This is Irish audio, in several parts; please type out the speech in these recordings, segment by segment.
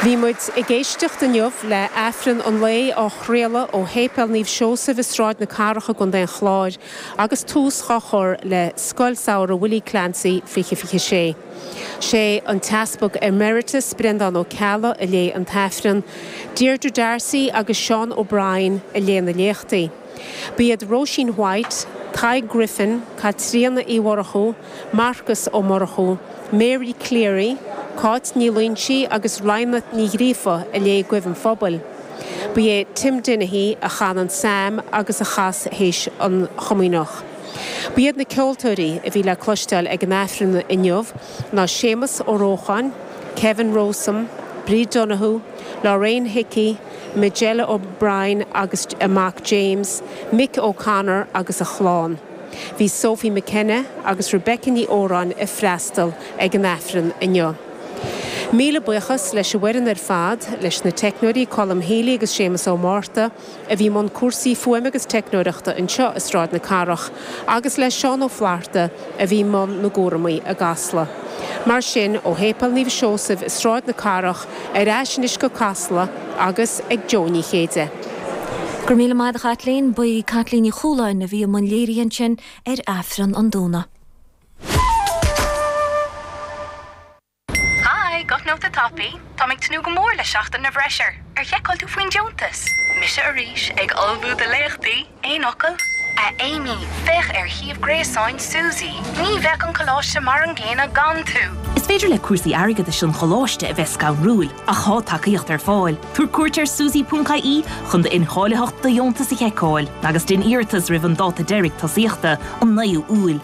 Bhí muid ag éisteacht inniu le Aifreann an lae á chraoladh ó Shéipéal Naomh Seosaimh i Sráid na Cathrach i gContae an Chláir agus tús dhá chur le Scoil Samhraidh Willie Clancy 2026. Sé an tEaspag Emeritus Breandán Ó Ceallaigh a léigh an tAifreann, Deirdre Darcy agus Seán O'Brien a léigh na léachtaí. Ba iad Róisín White, Tadhg Griffin, Caitríona Uí Mhurchú, Marcas Ó Murchú, Mary Cleary, Cáit Ní Loingsigh agus Rajma Ní Ghríofa a léigh Guí an Phobail. Ba é Tim Dennehy a chan an Psalm agus a chas théis an Chomaoineach. Ba iad na ceoltóirí a bhí le cloisteáil ag an Aifreann inniu ná Séamus Ó Rócháin, Kevin Rowsome, Bríd Donohue, Lorraine Hickey, Majella O'Brien agus a mac James, Mick O'Connor agus a chlann. Bhí Sophie McKenna agus Rebecca Ní Óráin ag freastal ag an Aifreann inniu. Míle buíochas leis an bhfoireann ar fad, leis na teicneoirí Colm Healy agus Séamus Ó Márta, a bhí i mbun cúrsaí fuaime agus teicneoireachta anseo i Sráid na Cathrach, agus le Seán Ó Flaithearta a bhí i mbun na gcúramaí i gCasla. Mar sin, ó Shéipéal Naomh Seosaimh i Sráid na Cathrach ar ais anois go Casla agus ag Jo Ní Chéide. Go raibh míle maith agat, a Chaitlín. Ba í Caitlín Ní Chualáin a bhí i mbun léirithe ansin ar Aifreann an Domhnaigh. Hi, guthnóta tapaidh? Táim ag tnúth go mór le seachtain na bhFreisear. Ar sheiceáil tú faoin deontas? Mise arís, ag ullmhú do léachtaí. Aon fhocal? A Amy, féach ar shuíomh gréasáin SUSI. Ní bheadh an coláiste mar an gcéanna gan tú! Is féidir le cúrsaí airgeadais an choláiste a bheith scanrúil, ach tá tacaíocht ar fáil. Tabhair cuairt ar susi.ie chun d'incháilitheacht do dheontas a sheiceáil agus déan iarratas roimh an dáta deiridh tosaíochta, an 9ú Iúil.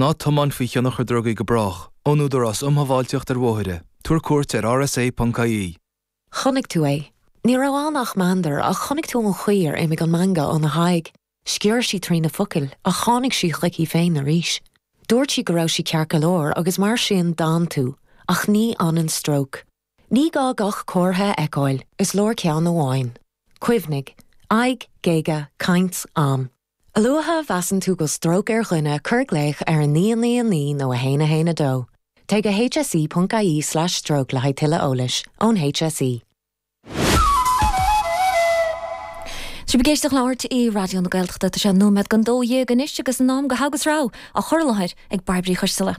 Ná tiomáin faoi thionchar drugaí go brách. Ón Údarás Um Shábháilteacht ar Bhóithre. Tabhair cuairt ar rsa.ie. Chonaic tú é. Ní raibh ann ach meandar, ach chonaic tú an chaoi ar imigh an meangadh óna haghaidh. Sciorr sí trí na focail, ach tháinig sí chuici féin arís. Dúirt sí go raibh sí ceart go leor, agus mar sin d'fhan tú. Ach ní fhanann stróc. Ní gá gach comhartha a fheiceáil, is leor ceann amháin. Cuimhnigh. Aghaidh, géaga, caint, am. A luaithe a mheasann tú go bhfuil stróc ar dhuine, cuir glaoch ar 999 nó 112. Téigh go hse.ie/stroke le haghaidh tuilleadh eolais ón HSE. Sibh ag éisteacht le RTÉ Raidió na Gaeltachta. Tá sé nóiméad don dó dhéag anois agus in am do Thogha agus Rogha á chur i láthair ag Bairbre Uí Choisdealbha.